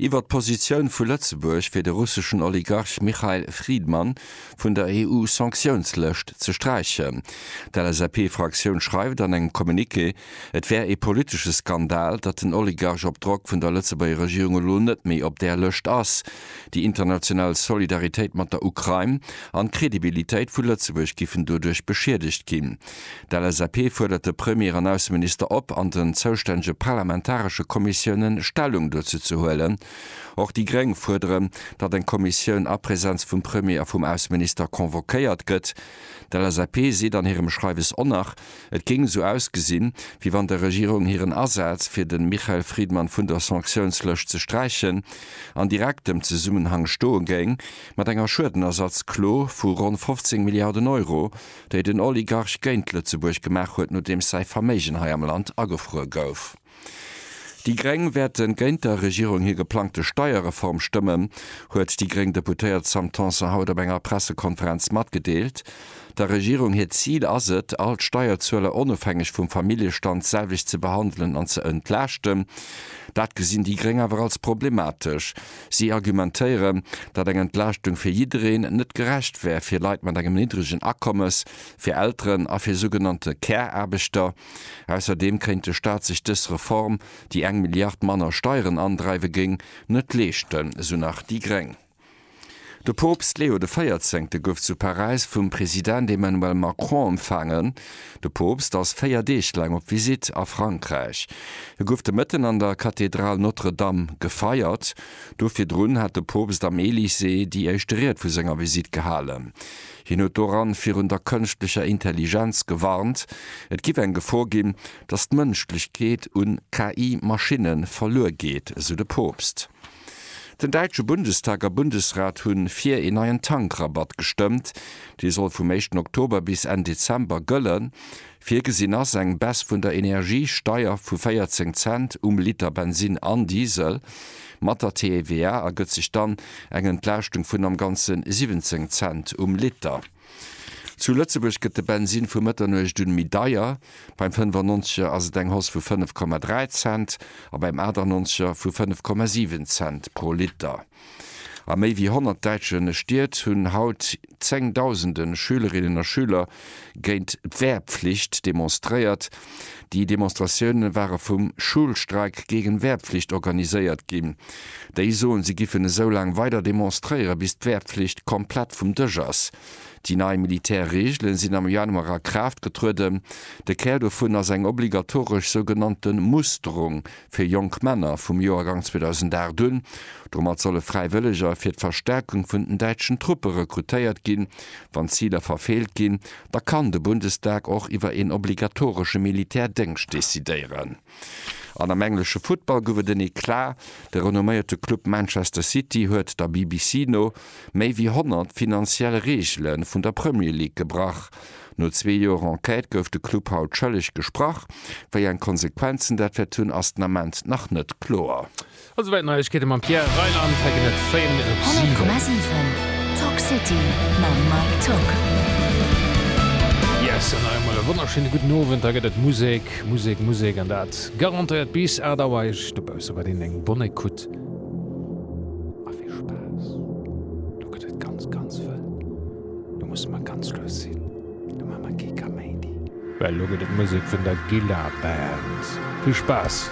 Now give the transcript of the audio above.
Iwwer d'Positioun vu Lëtzebuerg fir de russeschen Oligarch Mikhail Fridman vun der EU-Sanktiounslëscht ze sträichen. D'LSAP-Fraktioun schreift an engem Communiqué, et wär ee politesche Skandal, datt den Oligarch op Drock vun der Lëtzebuerger Regierung elo net méi op där Lëscht ass. Déi international Solidaritéit mat der Ukrain an d'Credibilitéit vu Lëtzebuerg giffen doduerch beschiedegt ginn. D'LSAP fuerdert de Premier an Ausseminister op, an den zoustännege parlamentaresche Kommissiounen Stellung dozou ze huelen. Och déi gréng fuerderen, datt eng Kommissioun a Präsenz vum Premier a vum Ausseminister convoquéiert gëtt. D'LSAP seet an hirem Schreiwes onnach, et géing esou ausgesinn, wéi wann der Regierung hiren Asaz, fir de Michael Friedmann vun der Sanktiounslëscht ze sträichen, an direktem Zesummenhang stoe géing mat enger Schuedenersatzklo vu ronn 15 Milliarden Euro, déi den Oligarch géint Lëtzebuerg gemaach huet, nodeems säi Verméigen hei am Land agefruer gouf. Déi Gréng wäerte géint der Regierung hir geplangte Steierreform stëmmen, huet déi gréng Deputéiert Sam Tanson haut op enger Pressekonferenz matgedeelt. Der Regierung hiert Zil ass et, all d'Steierzueler onofhängeg vum Familljestand d'selwecht ze behandelen an ze entlaaschten. Dat gesinn déi gréng awer als problematesch. Si argumentéieren, datt eng Entlaaschtung fir jiddereen net gerecht wär, fir Leit mat engem niddregen Akommes, fir Elteren a fir sougenannte Care-Aarbechter. Ausserdeem kéint de Staat sech dës Reform, déi eng Milliard manner Steieren andreiwe géing, net leeschten, esou nach déi gréng. De Poopst Leo de Véierzéngte gouf zu Paräis vum President Emmanuel Macron empfaangen. De Poopst ass 4 Deeg laang op Visitt a Frankräich. E gouf de Mëtten an der Kathedral Notre Dame gefeiert. Do virdrun hat de Poopst am Elysée déi éischte Ried vu senger Visitt gehalen. Hien huet doran virun der kënschtlecher Intelligenz gewarnt, et giff eng Gefor ginn, datt d'Mënschlechkeet un KI-Maschinne verluer geet, esou de Poopst. Den däitsche Bundestag a Bundesrat hu fir een neien Tankrabatt gestëmmt. Dee soll vum éischten Oktober bis Enn Dezember gëllen. Virgesinn ass eng Baisse vun der Energiesteier vu 14 Cent um Liter Bensinn an Diesel. Mat der TVA ergëtt sech dann eng Entlaaschtung vun am Ganze 17 Cent um Liter. Zu Lëtzebuerg gëtt de Bensinn vu Mëtternuecht un méi deier, beim 95 er ass et eng Hausse vu 5,3 Cent a beim 98 er vu 5,7 Cent pro Liter. A méi wéi 100 däitsche Stied hunn haut zéngdausende Schülerinnen a Schüler géint d'Wehrpflicht demonstréiert. Déi Demonstratioune ware vum Schulstreik gegen Wehrpflicht organiséiert ginn. Déi soen, si giffen esou laang weider demonstréiere bis d'Wehrpflicht komplett vum Dësch ass. Déi nei Militärreegele sinn am Januar a Kraaft getrueden. De Kär dovun ass eng obligatoresch sougenannte Musterung. fir jonk Männer vum Joergang 2008 un. Domat solle Fräiwëlleger fir d'Verstärkung vun den däitschen Truppe rekrutéiert ginn. Wann d'Ziler verfeelt ginn, da kann de Bundestag och iwwer een obligatoresche Militärdéngscht decidéieren. An am englesche Futtball gouf et en Eclat. De renomméierte Club Manchester City huet, der BBC no, méi wéi 100 finanziell Reegele vun der Premier League gebrach. No zwee Joer Enquête gouf de Club haut schëlleg gesprach. Wéi eng Konsequenzen dat wäert hunn, ass den Ament nach net kloer. A souwäit d'Neiegkeete mam Pierre Reyland. Hei ginn et Fame op 7. Talk City mam Mike Tocq. Yes an nach eemol e wonnerschéine gudden Owend. Hei gëtt et Musek, Musek, Musek an dat garantéiert bis 8 Auer. Iech dobausse wëll een eng Bonne Ecoute a vill Spaass. Do gëtt et ganz, ganz vëll Do musse mer ganz lues sinn, do maache mer kee Kaméidi. Well elo gëtt et Musek vun der Gilla Band. Vill Spaass!